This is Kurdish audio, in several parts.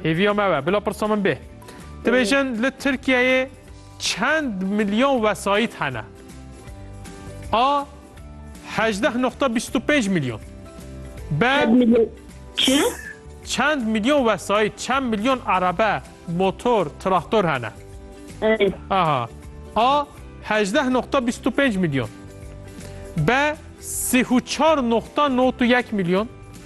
Hêviya me we. Bila pirsa min bê. Tu bêjin li Tirkiyeyê çend milyon wesayît hene? A 18.25 milyon. B Çi? çend milyon wesayît, çend milyon arebe, motor, traktor hene? Ey. Aha. A 18.25 milyon. B 34.91 milyon.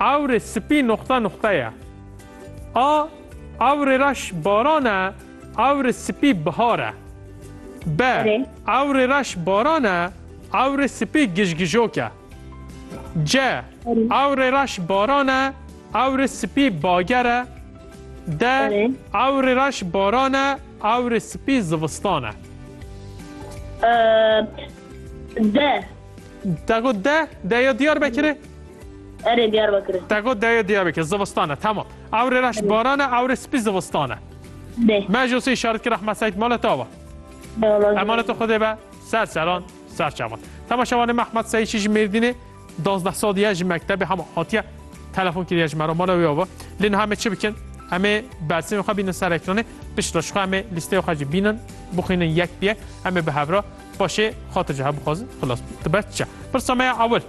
Ewrê sipî noxta noxta ye. A Ewrê reş baran e, ewrê sipî bihar e. B Erê. Ewrê reş baran e, ewrê sipî gijgijok e. C Erê. Ewrê reş baran e, ewrê sipî bager e. D Erê. Ewrê reş baran e, ewrê sipî zivistan e. Ee, D. Te got de, deya Diyarbekirê? Erê Diyarbekirê. Te got deya Diyarbekirê, zivistane, tamam. Ewrê reş barane, ewrê spî zivistane. Dê. Me ji wsê işaret kir Ahmed Seîd mala te ava. Emana te xwedê be, ser seran, ser çavan. Tema şevanê me Ahmed Seîd ji Mêrdînê, dazdeh sal diye ji mektebê hema hatiye telefon kiriye ji me re mala wê ava. Lê niha me çi bikin? Em ê bersîmê xwe bînin ser ekranê, pişt re ji xwe em ê lîsteya xwe jî bînin, bixwînin yek bi yek, em ê bi hev re Paşê xwe tu ji hev bixwazin xilas bibî. Tu ber çiya? Pirsa me ya ewil.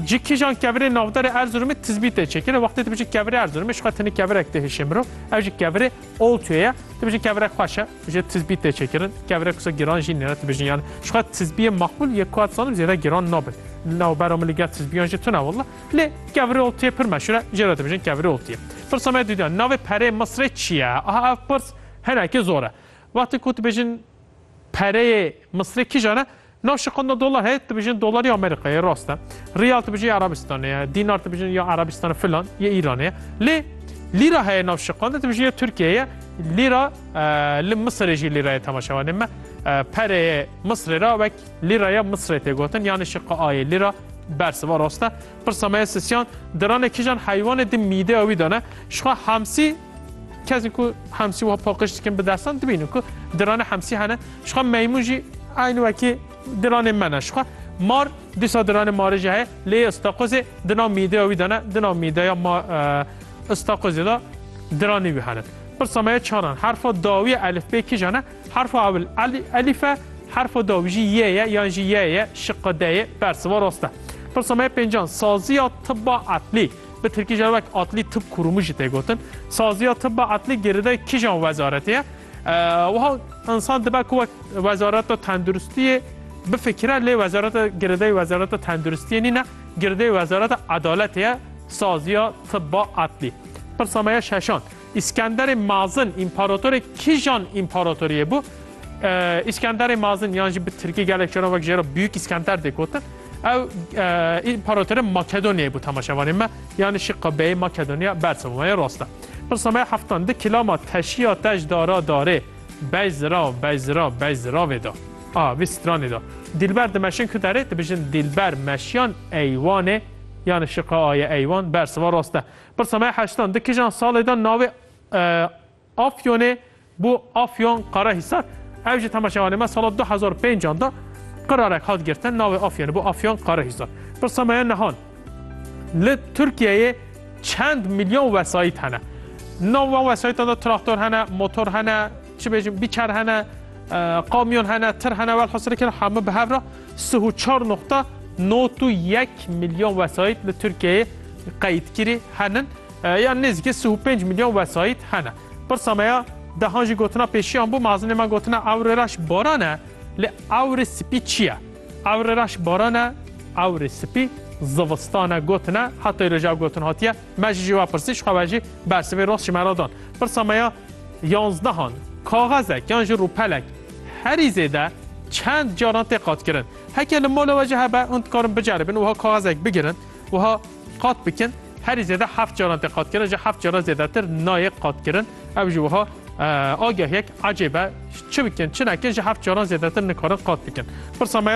Ji kîjan kevirê navberê Erzurumê tizbî tê çêkirin? Wextê tu bijî kevirê Erzurumê, ji xwe tenê kevirek tê hişê mirov. Ev jî kevirê Oltuyê ye. Tu bijî kevirek xweş e, ji tizbî tê çêkirin. Kevirek wisa giran jî nîne tu bijîn yan. Ji xwe tizbiyê maqbûl yê ku ez dizanim zêde giran nabin. Navbera min li gel tizbiyan jî tune walla. Lê kevirê Oltuyê pir meşhûr e. Jê re tu bijîn kevirê Oltuyê. Pirsa me duydiyan. Navê perê Misrê çi ye? Aha ev pirs hinekî zor e. Wextê ku tu bijîn Pereyê Misrê kîjan e? Nav şiqanda dolar heye dibijin dolarî Amerîkayê ye rast e. Riyal dibijî ya Erabistanê ye, dînar dibijin ya Erabistan filan yê Îranê ye. Lê lîra heye nav şiqanda dibijin ya Tirkiyeyê ye. Lîra li Misirê jî lîra ye temaşe wanê me. Pereyê Misrê ra wek lîraya Misrê tê gotin yanê şiqa ayê lîra bersiva rast e. Pirsa me ye sisyan diranê kîjan heywanê di mîdeya wî de ne? Jixwe hamsî Kesên ku hemsî wiha paqij dikin bi destan dibînin ku diranê hemsî hene jixwe meymûn jî aynî wekî diranê me ne jixwe mar dîsa diranê marê jî heye lê Îstaqozê di nav mîdeya wî de ne di nav mîdeya ma Îstaqozê de diranê wî hene pirsa me ye çaran herfa dawî elifbê kîjan e herfa ewil elîf e herfa dawî jî yê ye yan jî yê ye şiqa de ye bersiva rast e pirsa me ye pêncan saziya tibba etlî Bi tirkî jî wek atlî tib kurûmû jî tê gotin. Saziya tibba atlî girêdayê kîjan wezaretê ye? Wiha insan dibe ku wek wezareta tenduristiyê bifikire lê wezareta girêdayê wezareta tenduristiyê nîne, girêdayê wezareta edaletê ye, saziya tibba atlî. Pirsa me ye şeşan. Îskenderê Mazin împaratorê kijan împaratoriyê bû? Îskenderê Mazin yan jî bi tirkî gelek caran wek jê re Büyük İskender dê gotin. Ew împaratorê Makedonyayê bû temaşevanê me. Yani şî qebeyê Makedonya bersevmayê rast e. Pirsa me heftan di kilama teşiya tej dara darê bej zirav bej zirav bej ziravê da. A vî stranê da. Dilber dimeşin ku derê dibijin Dilber meşiyan eywanê yani şiqa aye eywan berseva rast e. Pirsa me heştan di kijan salê de navê Afyonê bû Afyon Qarahisar. Ew ji temaşevanê me sala du hezar û pênc an de qirarek hat girtin navê Afyonê bû Afyon Qarahisar. Pirsa me ye nihan li Tirkiyeyê çend milyon wesayît hene. Nav wan wesayîtan de traktor hene, motor hene, çi bêjim bîçer hene, kamyon hene, tir hene, welhasirê kir hemû bi hev re. Sih û çar noqta not û yek milyon wesayît li Tirkiyeyê qeyîdkirî henin ya nêzîkî sih û pênc milyon wesayît hene. Pirsa me ya dehan jî gotina pêşiyan bû, mezin ê me gotina ewrê reş baran e, lê ewrê spî çi ye? Ewrê reş baran e, ewrê spî zivistan e gotine, heta îro jî ev gotin hatiye, me jî jê we pirsî ji xwe ve jî bersivê rost ji me re dan. Pirsa me ya Yanzdehan, kaxezek yan jî rûpelek herî zêde çend caran tê qatkirin. Heke li mala we jî hebe, hûn dikarin biceribin wiha kaxezek bigirin, wiha qat bikin. Herî zêde heft caran tê qatkirin, ji heft caran zêdetir nayê qatkirin. Ew jî wiha agahiyek ecêb e. Çi bikin, çi nekin ji heft caran zêdetir nikarin qat bikin. Pirsa me ya